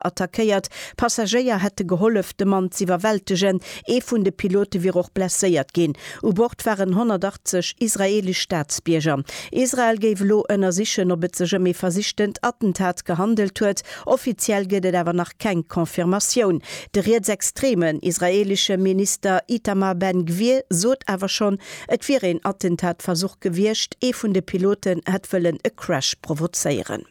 attackéiert. Passagéier hätte gehollef, de Mann z'iwwerwältegen. Ee vun de Pilote wier och blesséiert ginn. U Bord waren 180 israeelesch Staatsbierger. Israel géif elo ënnersichen, ob et sech ëm ee versichtent Attentat gehandelt huet. Offiziell gëtt et awer nach keng Confirmatioun. De rietsextremen israeelesche Minister Itamar Ben-Gvir sot awer schonn, et wier een Attentatversuch gewiescht, ee vun de Piloten hätt wëllen e Crash provozéieren.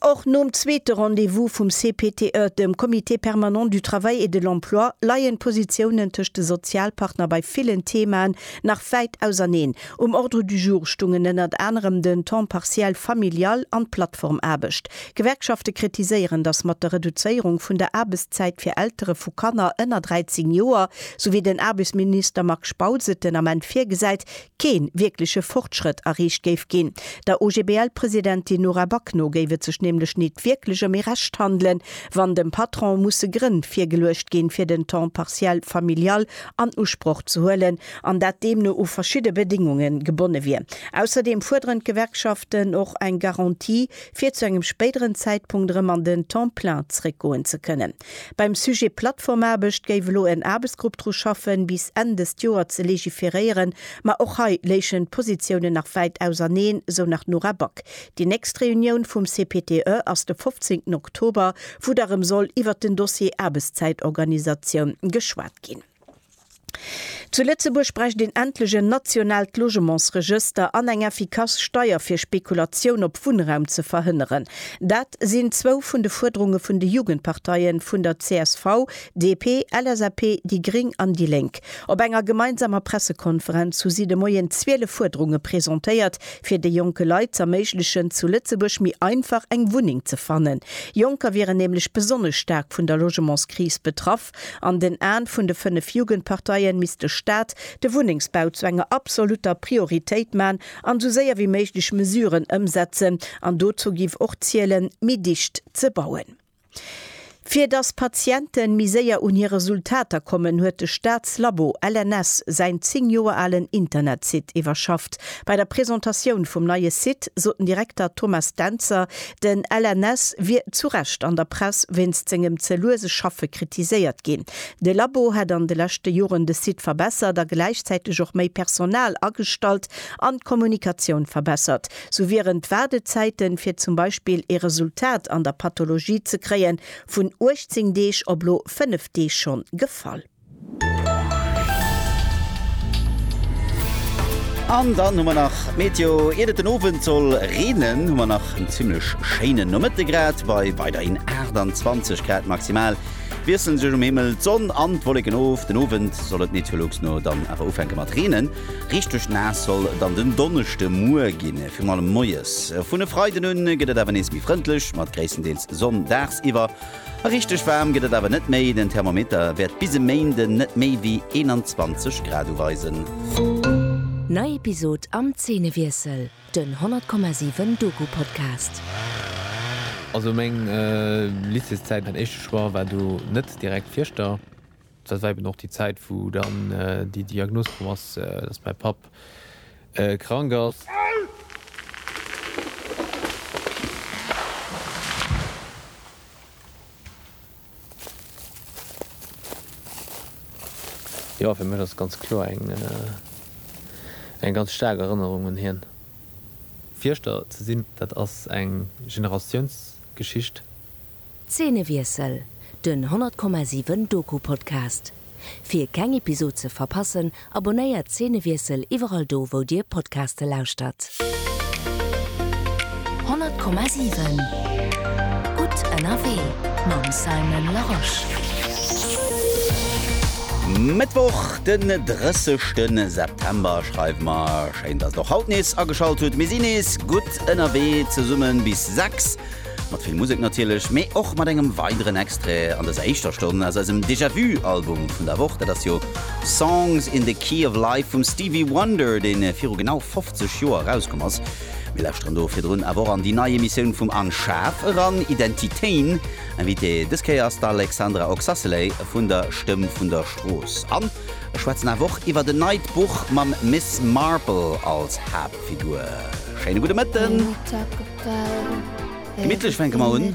Och nom zweete Rendez-vous vum CPTE, dem Comité permanent du travail et de l'emploi, leien d'Positiounen tëscht de Sozialpartner bei villen Theemaen nach wäit auserneen. Um Ordre du jour stungen ënnert anerem den Temps partiel familial an d'Plattformaarbecht. D'Gewerkschafte kritiséieren, datt mat der Reduzéierung vun der Aarbechtszäit fir Eltere vu Kanner ënner 13 Joer, sou wéi den Aarbechtsminister Marc Spautz et den Ament virgesäit, kee wierkleche Fortschrëtt erreecht géif ginn. Der OGBL-Presidentin Nora Back no géif et sech nämlech nit wierklech ëm ee Recht handelen, wann dem Patron musse Grënn virgeluecht ginn, fir den Temps partiel familial an Usproch ze huelen, an dat deemno u verschidde Bedéngunge gebonne wier. Ausserdeem fuerderen d'Gewerkschaften och eng Garantie, fir zu engem spéideren Zäitpunkt erëm an den Temps plein zeréckgoen ze kënnen. Beim Sujet Plattformaarbecht géif elo en Aarbechtsgrupp dru schaffen, bis Enn dëst Joer ze legiferéieren. Ma och hei léichen d'Positiounen nach wäit auserneen, esou nach d'Nora Back. Déi nächst Reunioun vum CPTE ass de 15 Oktober, wou da rëm soll iwwert den Dossier Aarbechtszäitorganisatioun geschwat ginn. Zu Lëtzebuerg bräicht een endlech en nationaalt Logementsregëster an eng effikass Steier fir Spekulatioun op Wunnraum ze verhënneren. Dat sinn zwou vun de Fuerderunge vun de Jugendparteie vun der csv, DP, LSAP, déi gréng an déi lénk. Op enger gemeinsamer Pressekonferenz hu si de Moien 12 Fuerderunge presentéiert, fir de jonke Leit z'erméiglechen zu Lëtzebuerg méi einfach eng Wunneng ze fannen. Jonker wieren nämlech besonnesch staark vun der Logementskris betraff. An den Aen vun de 5 Jugendparteien misst de Staat de Wunnengsbau zu enger absoluter Prioritéit maan an sou séier wéi méiglech Mesuren ëmsetzen. An dozou giff och zielen méi dicht ze bauen. Fir dass Patienten méi séier un hir Resultater kommen, huet de Staatslabo LNS säin 10 Joer alen Internetsite iwwerschafft. Bei der Presentatioun vum neie Site sot den Direkter Thomas Dentzer, Den LNS wier zu Recht an der Press wéinst sengem ze luese Schaffe kritiséiert ginn. De Labo hätt an de leschte Joren de Site verbessert a gläichzäiteg och méi Personal agestallt an d'Kommunikatioun verbessert. Sou wieren d'Waardezäiten, fir zum Beispill ee Resultat an der Pathologie ze kréien, vun 18 Deeg op elo 5 Deeg schonn gefall. An dann hu mer nach d'Meteo. Iert et den Owend soll reenen, hu mer nach en zimmlech schéinen Nomëtte grad bei weiderhin 28 Grad maximal. Wiesselen sech um Himmel d'Sonn an d'Wolleken of. Den Owend soll et Meteolux no dann awer ufänke mat reenen. Richteg naass soll dann den Donneschde muer ginn, virun allem moies. Vun e Freiden un gëtt et awer nees méi frëndlech mat gréisstendeels Sonn dagsiwwer. Richteg waarm gëtt et awer net méi, den Thermometer wäert bis e Méinden net méi wéi 21 Grad uweisen. Nei Episod am Zeenewiessel, den 100,7 Doku-Podcast. Also meng Lycéeszäit, mäin éischte Choix war do net direkt Fieschter. Dat war eben och déi Zäit, wou dann déi Diagnos komm ass, dass mäi Papp krank ass. Jo, fir mech ass et ganz kloer eng ganz staark Erënnerung un hien. Fierschter ze sinn, dat ass eng Generatiounsgeschicht. Zeenewiessel, den 100,7 Doku-Podcast. Fir keng Episod ze verpassen, abonnéiert Zeenewiessel iwwerall do wou dir Podcaste lauschtert. 100,7 Gutt ënnerwee mam Simon Larosche. Mëttwoch den 30 ste September schreiwe mer. Schéin dass der och haut nees ageschalt hutt. Mir si nees gutt ënnerwee zesummen bis 6. Mat vill Musek natierlech, mee och mat engem weideren Extrait an dëser éischter Stonn aus eisem Déjà Vu Album vun der Woch. Dat ass jo Songs in the Key of Life vum Stevie Wonder, dee viru genau 50 Joer erauskomm ass. Mir lauschteren do virdrun awer och an déi nei Emissioun vum Unshav eran, Identitéen. Invité dës Kéier ass d'Alexandra Oxacelay vun der Stëmm vun der Strooss. An ech schwätzen awer och iwwert en neit Buch mam Miss Marple als Haaptpersoun. Figur. Schéine gudde Mëtten. Gemittlech fänke mer un.